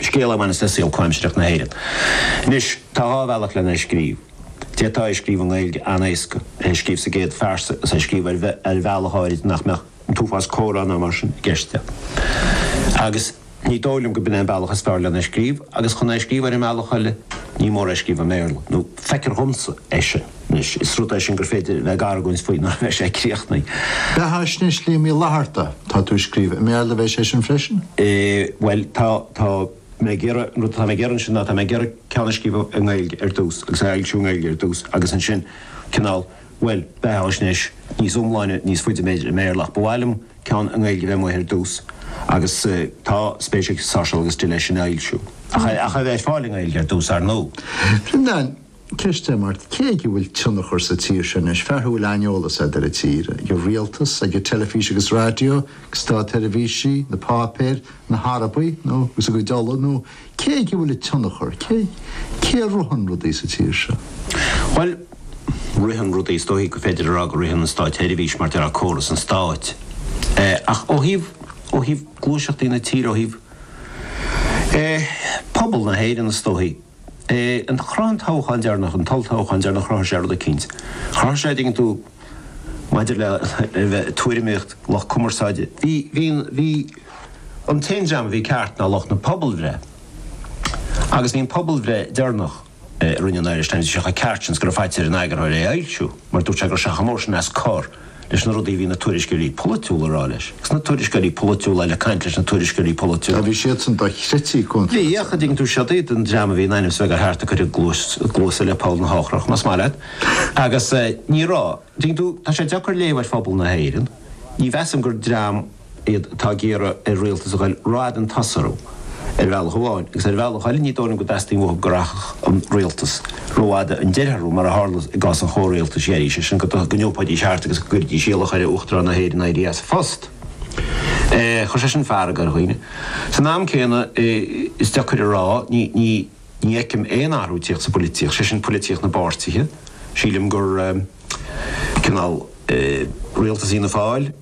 scéal a bhaineas le saol comhaimsireach na hÉireann. Anois, tá dhá bhealach lena scríobh. D'fhéadfá é a scríobh i nGaeilge an-éasca, é a scríobh sa gcéad phearsa agus é a scríobh ar bhealach áirid nach mbeadh an t-uafás comhrá ná mar sin i gceist leo. Agus ní dóigh liom gurb in é an bealach is fearr lena scríobh, agus chun é a scríobh ar an mbealach eile, ní mór é a scríobh i mBéarla, nó feictear dhomsa é sin. Anois, is rud é sin gur féidir a bheith ag argóint faoi nuair a bheidh sé críochnaithe. Beathaisnéis Liam Uí Fhlaithearta, tá tú ag scríobh, i mBéarla a bheidh sé sin freisin? Bhuel, tá, tá mé ag iarraidh, an rud atá mé ag iarraidh ansin ná, tá mé ag iarraidh ceann a scríobh i nGaeilge ar dtús agus é a fhoilsiú i nGaeilge ar dtús agus ansin cineál, bhuel, beathaisnéis níos iomláine níos faide i mBéarla ach ba mhaith liom ceann i nGaeilge a bheith amuigh ar dtús agus tá spéis ag Sáirséal agus Dill é sin a fhoilsiú ach é a bheith ar fáil i nGaeilge ar dtús, ar ndóigh. Bhreandáin, Ceist eile mar cé aige a bhfuil tionchar sa tír seo anois, fear a bhfuil an-eolas agat ar an tír, ag an rialtas, ag an teilifís agus raidió, ag státseirbhísigh, na páipéir, na hArabaigh agus a gcuid ola, nó cé aige a bhfuil an tionchar, cé cé a ritheann rudaí sa tír seo? Bhuel, ritheann rudaí, is dóichí go féidir a rá go ritheann an státseirbhís mar déarfá córas an stáit eh ach ó thaobh, ó thaobh gluaiseachtaí na tíre, ó thaobh eh pobal na hÉireann is dóichí, eh chruthaigh an toghchán deireanach, an t-olltoghchán deireanach, chruthaigh sé rud eicínt. Chruthaigh sé, dtuigeann tú, maidir le tuairimíocht lucht cumarsáide, bhí, bhí, bhí an t-aon dream a bhí ceart ná lucht na pobalbhreith agus bhí an phobalbhreith deireanach a rinne an Irish Times, bhí sé chomh ceart sin is go raibh faitíos ar an eagarthóir é a fhoilsiú mar dúirt sé go raibh sé chomh mór sin as cor. leis na rudaí a bhí na tuairisceoirí polaitiúla a rá leis, agus na tuairisceoirí polaitiúla eile ag caint leis na tuairisceoirí polaitiúla. Bhí siadsan dochreidte contrártha. Bhí, ach an dtuigeann tú, siod iad, an dream a bhí in ainm is bheith gur cheart go gcuirfeadh a gcluasa le poll na heochrach, más maith leat. Agus ní raibh. An dtuigeann tú, tá sé deacair léamh ar phobal na hÉireann. Ní mheasaim gur dream. iad atá ag iarraidh ar rialtas a ghoil roimh an tsruth ar bhealach amháin agus ar bhealach eile ní dóigh liom go dteastaíonn uathu go rachadh an rialtas rófhada ón sruth mar a tharla i gcás an chomhrialtais dheiridh, sé sin go n-iompóidís thart agus go gcuirfidís iallach ar Uachtarán na hÉireann éirí as a phost. Chuir sé sin fearg ar dhaoine. San am céanna is deacair a rá, ní ní fheicim aon athrú tíocht sa bpolaitíocht, sé sin polaitíocht na bpáirtithe, sílim gur cineál rialtas Fhianna Fáil,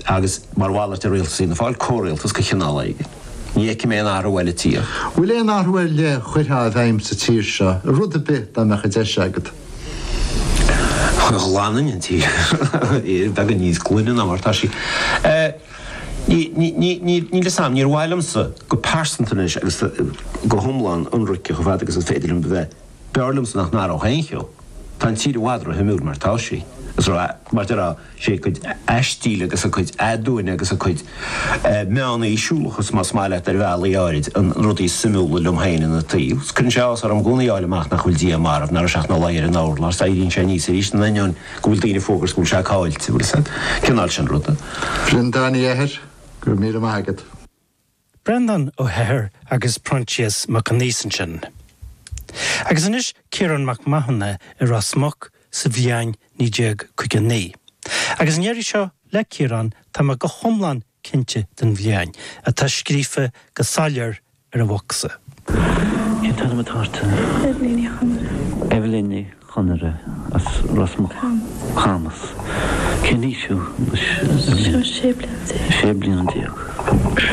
agus mar mhalairt ar rialtas Fhianna Fáil, comhrialtas de chineál éigin. Ní fheicim aon athrú eile ag tíocht. Bhfuil aon athrú ar leith a chuirtheá i bhfeidhm sa tír seo, i rud ar bith, dá mbeadh an deis agat? Ghlanfainn an tír. Beagán níos glaine ná mar atá sí. Níl 'fhios a'm, níor mhaith liomsa go pearsanta anois agus go hiomlán ionraic chomh fada agus is féidir liom a bheith, b'fhearr liomsa nach n-athródh aon cheo. Tá an tír i bhfad ró-shuimiúil mar atá sí. Is ró, mar a déarfá, 'sé a cuid aistíl agus a cuid aduaine agus a cuid meánaoisiúlachas, más maith leat, ar bhealaí áirid, an rud is suimiúla liom féin ina taobh. Cuireann sé áthas orm i gcónaí a fháil amach nach bhfuil Dia marbh, nach raibh sé ach ina luí ar an urlár, is éiríonn sé aníos arís, in ainneoin go bhfuil daoine ag fógairt go bhfuil sé caillte, uilig is an cineál sin ruda. A Bhreandáin Uí Eithir, go raibh míle maith agat. Breandán Ó hEithir agus Proinsias Mac Aonghusa ansin. Agus anois Ciarán Mac Mathúna i Ros Muc sa bhliain 1959. Agus an iarraidh seo, le Ciarán, tá mé go hiomlán cinnte den bhliain atá scríofa go soiléir ar an mbosca. Cén t-ainm atá ort? Eibhlín Ní Chonaire. Eibhlín Ní Chonaire as Ros Muc. Camas. Camas. Cén aois thú anois Eibhlín? Sé bliana déag. Sé bliana déag.